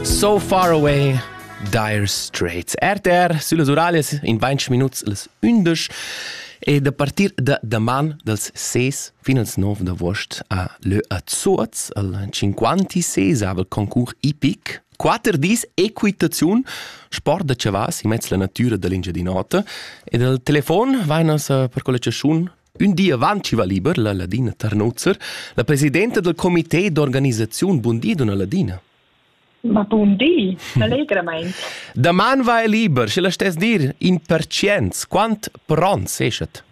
So Far Away Dire Straits. RTR süllas Uralias in 20 minuts las 11 e da partir da daman dals 6 fin als 9 d'agost a Lö a Zuoz al 56 concurs IPIC Quatter dis equitaziun, sport da chavas in mezz la natura da l'Engiadin'Ota e dal telefon vainas per quella chaschun Ün di avant chi va liber la ladina Tarnuzzer, la presidenta dal comité d'organisaziun bundi donna Ladina. Ma bun di, allegramaing. Daman va el liber, sche la stess dir in percients, quant pron seschet?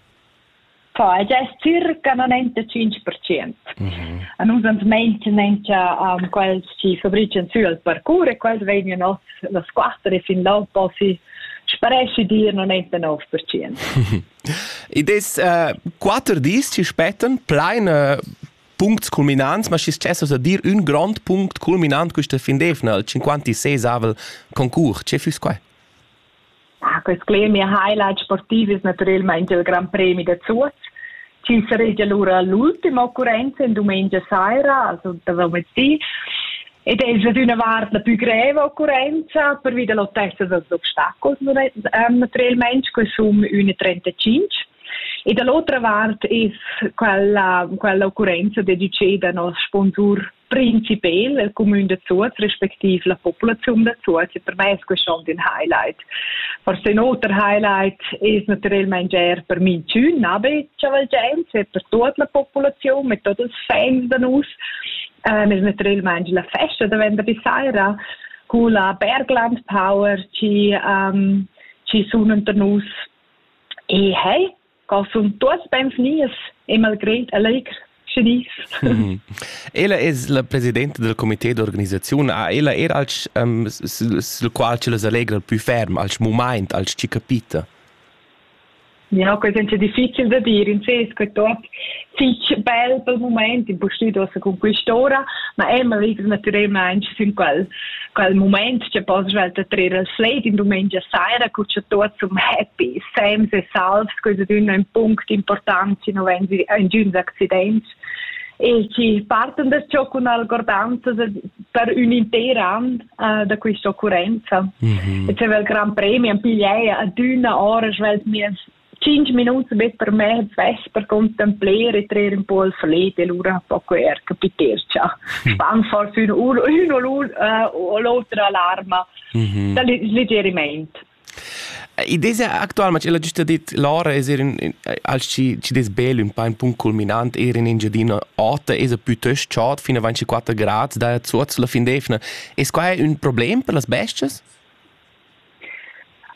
Fa, ella es circa 95%. Mm -hmm. A nus ans meint nentia um, quels chi fabrican sü al parcours e quels vegnan os las quatter e fin là posi sparesci dir 99%. Id es uh, quatter dis chi spettan plain uh, puncts culminants, ma schi stessas a dir ün grond punct culminant quista fin d'eivna, il 56avel concurs. Che füss quai? Ah, quest gremi highlight sportiv es natüralmaing il Gran Premi da Zuoz. Ci saregia lura l'ultima occurrenza in dumengia saira, also da venerdì. Ed è già d'una vart la più greva occurrenza, pervi da l'autezza dals obstacels um, per il mens, che sono 1,35. E dall'altra vart è quella, quella occurrenza dedicata al nostro sponsor principal, il comune de Zuoz, respektiv la populazione de Zuoz. E per me è questo schon ein Highlight. Forse ein otro Highlight ist natürlich er per mein schön Nabe Chavalgense, per tutta la popolazione, mit tutti i fans da noi. Ähm, ist natürlich la festa da venerdì sera con la Bergland Power ci, ähm, ci sono unter nus. E hey, cosum tuos benvenies e malgré allegr Chinese. ella es la presidenta del comité d'organisazione. Ah, ella era als um, sul qual ci les allegra il più ferm, als moment, als ci capita. Ja, que sainza difficil da dir in ses, que tot fich bel pel moment, impostidosa con quest'ora, ma Emma vives natüralmaing sün quel quel moment che poi svelt trer al slate in domenica sera cu c'è tutti happy, Sams e salvs, questo è un punto importante, no vengi un accidenti. e chi partan da ciò cun algordanzas per ün inter an uh, da quista occurrenza. Mm -hmm. E c'è il Gran Premi, am pigliai adüna ora, svelt mies 5 minuti bet per me svess per contemplare e trer un po' il flet e lura poco er capitercia hm. span for fino uno uno l'uno l'altra alarma mm -hmm. da legerimento I desa actualmaing ch'ella güsta dit Laura es eir ün als chi chi dess bel ün pa in punct culminant eir in Engiadina Ota esa pütöst chod fin a 24 grad da zuot sulla fin d'eivna. Es quai ün problem per las bes-chas?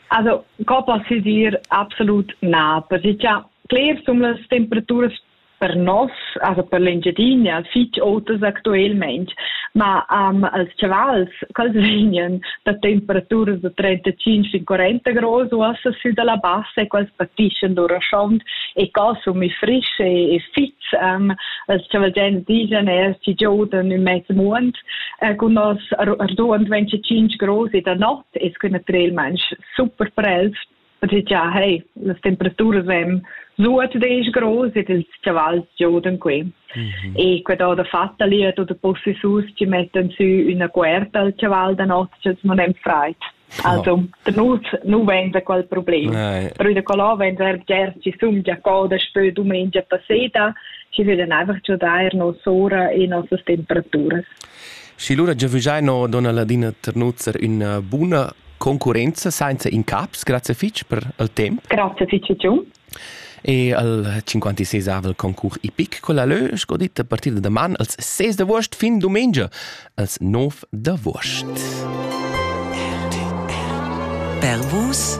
Also, co poss i dir? Absolut na, perche cha cler sun las temperaturas per noss, also per l'Engiadina, fitg otas actualmente, ma um, als chavals, quels vegnan da temperaturas da 35-40 graus uossa sü dalla bassa e quels patischan lur schond e consumi frisch e, e fits. Um, als chavalgents digen er, ci giodan ün mezz muond äh, con nos arduond 25 graus da notte e es que naturalmente super per els ja, hey, las temperaturas èn zuatdesch gross ed ils chavals giodan qui. Mm -hmm. E quella da fattaliet oder possesus ci mettan sü üna cuerta al chaval da notg, als non hem freit. Also, oh. der Nus, nu vend da quel problem. Nein. Però da quella vend er ger ci sum già coda spö dumengia passeda, ci veden einfach già daer nos ora e nossas temperaturas. Și lura giavügiai no donna Ladina Ternuzzer üna buna Concurrenza senza incaps, grazie fitg per il temp. Grazie fitg giu. E al 56 concurs epic con la lö, sco dit, a partire da man als 6 d'agost fin domenica als 9 d'agost. Per vos